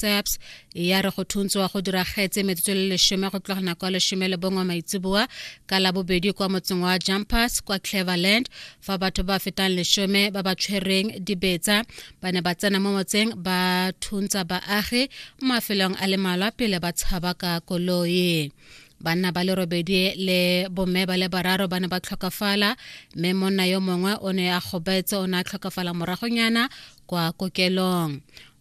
tsaps ya re go thuntswa go diragetse metsotso le lesome go tloga nako ya lesome le bongwe maitseboa ka labobedi kwa motseng wa jumpers kwa cleverland fa batho ba fetang lesome ba ba tshwereng dibetsa ba ne ba tsena mo motseng ba thuntsha baagi mo mafelong a le malwa pele ba tshaba ka koloi banna ba le robedi le bomme ba le bararo ba ne ba tlhokafala mme monna yo mongwe o ne a gobetse o ne a tlhokafala moragonyana kwa kokelong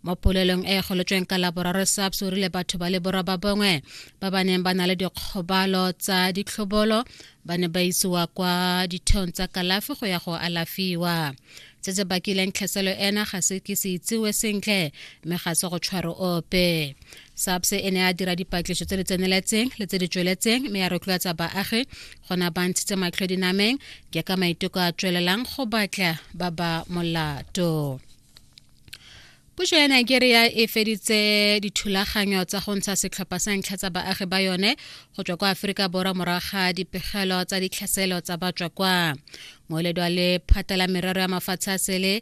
mo polelong e e golotsweng ka laboraro saps o rile batho ba le borwa ba bongwe ba ba neng ba na le dikgobalo tsa ditlhobolo ba ne ba isiwa kwa ditheong tsa kalafi go ya go alafiwa se se bakileng tlhaselo ena ga se ke se itsiwe sentle mme ga se go tshwaro ope SAPS e ne a dira dipatliso tse di tseneletseng le tse di tsweletseng mme ya rotloetsa baagi gona ba ntshitse matlho dinameng ke ka maiteko a tswelelang go batla ba ba molato puso ya nigeria e feditse dithulaganyo tsa go ntsha setlhopha sa ntlha tsa baagi ba yone go tswa kwa aforika borwa morago ga dipegelo tsa ditlhaselo tsa batswa kwa moeledi wa lephata la merero ya mafatshe a sele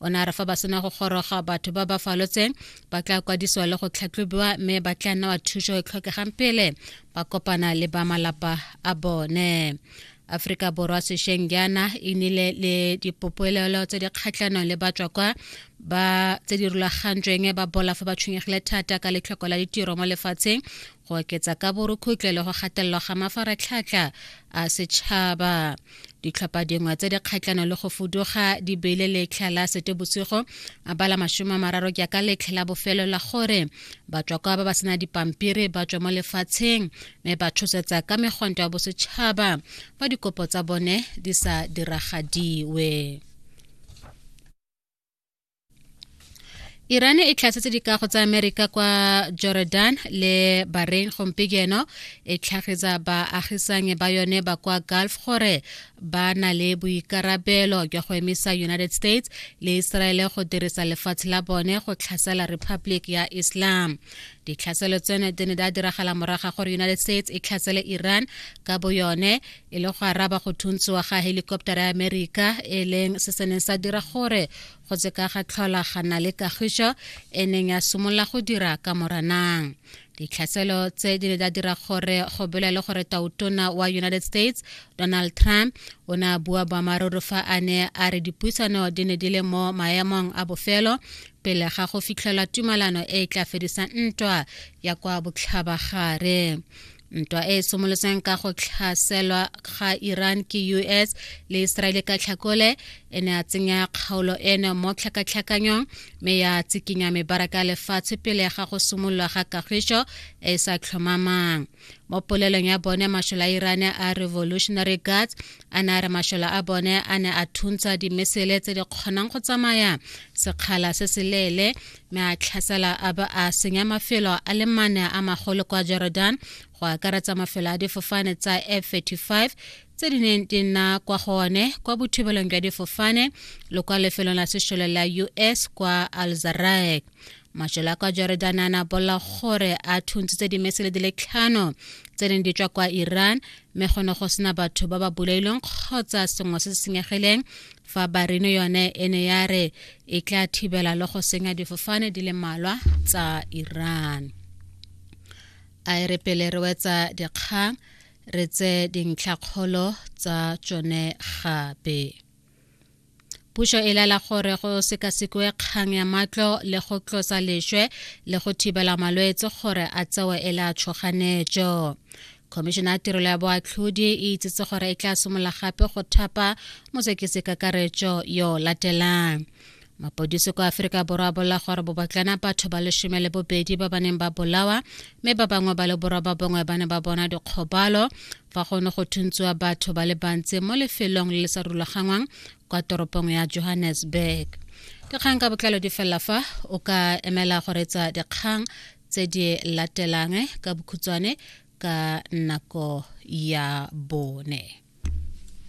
o ne a re fa ba sena go goroga batho ba ba falotseng ba tla kwadisiwa le go tlhatlhobiwa mme ba tla nna wa thuso e tlhokegang pele ba kopana le ba malapa a bone aforika borwa sešweng jaana e nile le dipopolelo tse di kgatlhanong le batswa kwa ba tse di rulagantsweng ba bola fa ba tshwenyegile thata ka letlhoko la ditiro mo lefatsheng go oketsa ka borukhutle le go gatelelwa ga mafaratlhatlha a setšhaba ditlhopha dingwe tse di kgatlhano le go fuduga di beile letlha la sete bosigo a bala masome a mararo jaaka letlha la bofelo la gore batswakwa ba ba sena dipampiri ba tswe mo lefatsheng mme ba tshosetsa ka megwanto ya bosetšhaba fa dikopo tsa bone di sa diragadiwe Iran e tlhatsetse dikago tsa Amerika kwa Jordan le Bahrain gompieno e tlhagetsa baagisanyi ba yone ba kwa Gulf gore ba na le boikarabelo jwa go emisa United States le Israel go dirisa lefatshe la bone go tlhasela Republic ya Islam. Ditlhaselo tseno di ne di diragala moraga gore United States e tlhasele Iran ka boyone e le go araba go thuntswa ga helikoptara ya amerika e leng se se neng sa dira gore go tseka ga tlhola ga na le kagišo e neng ya simolola go dira ka moranang ditlhaselo tse di ne di dira gore go bolele gore tautona wa united states donald trump o ne a bua boammaaruri fa a ne a re dipuisano di ne di le mo maemong a bofelo pele ga go fitlhelwa tumalano e e tla fedisang ntwa ya kwa botlhabagare ntwa e e somolotseng ka go tlhaselwa ga iran ke us le israele ka tlhakole e ne a tsenya kgaolo eno mo tlhakatlhakanyong mme ya tsikinya mebaraka ya lefatshe pele ga go simolola ga kagišo e e sa tlhomamang mo polelong ya bone mashola a iran a revolutionary guards a ne a re mashola a bone a ne a thuntsha dimesele tse di kgonang go tsamaya sekgala se se leele mme a tlhasela a ba a senya mafelo a le mane a magolo kwa jordan go akaretsa mafelo a difofane tsa f-35 tse di neng di nna kwa go one kwa bothibelong jwa difofane le kwa lefelong la sešole la us kwa alzaraek majelo a kwa jordan a na bolla gore a thuntshitse dimesele di le tlhano tse neng di tswa kwa iran mme go ne go sena batho ba ba bolailweng kgotsa sengwe se se senyegileng fa barino yone e ne ya re e tla thibela le go senya difofane di le malwa tsa iran a e re pele re wetsa dikgang re tse dintlhakgolo tsa tsone gape pušo e lela gore go sekasekwe kgang ya matlo le go tlosa lešwe le go thibela malwetse gore a tsewe e le a tšhoganetšo khomišene ya tirelo ya boatlhodi e itsetse gore e tla simolola gape go thapa mosekisi kakaretšo yo latelang mapodisi kwa aforika borwa a bolela gore bobatlana batho ba lesome le bobedi ba ba neng ba bolawa mme ba bangwe ba le borwa ba bongwe ba ne ba bona dikgobalo fa go ne go thuntswa batho ba le bantsi mo lefelong le le sa rulagangwang kwa toropong ya johannesburg dikgang ka botlalo di felela fa o ka emela go retsa dikgang tse di latelang ka bokhutshwane ka nako ya bone